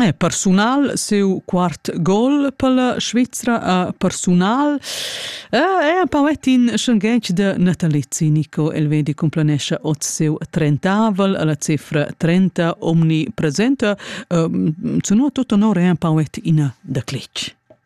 Eh, persunal, seu quart gol per la Svizra a persunal. Eh, è un poet in schangetg de Natalizzi Nico Elvedi complanesce oz seu trentavel alla cifra 30 omni presenta. Uh, ehm, zuno tutto onore è un poet in de Clic.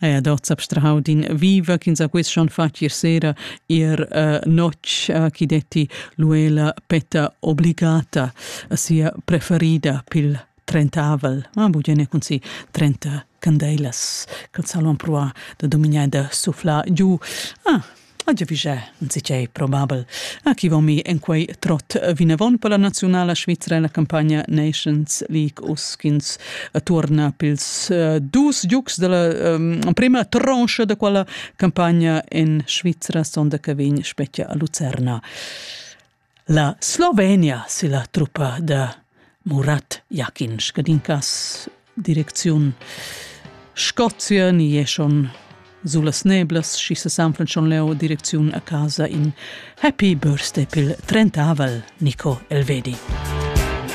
Eia, dort s'abstrahau d'in viva ch'ins ha quest schon fatg ier sera, ier uh, notg, uh, chi detti l'uela petta obligata, sia preferida pil trentavel, ma bugene cun si trenta candeilas, ch'els havan pruà da dominar da sufflar giu. Ah, A giavischà insitgei probabel. A chi vom mi en quei trot vinavon per la nazionala Svizra la campagna Nations League uschins torna pils eh, dus giugs della um, prima troncha da quella campagna en Svizra sonda che vegn spetga a Lucerna. La Slovenia silla truppa da Murat Jakin scadincas direcziun Scozia ni è schon sulas neblas schi se sanflan schon leo direcziun a casa in Happy Birthday pil trentavel Nico Elvedi.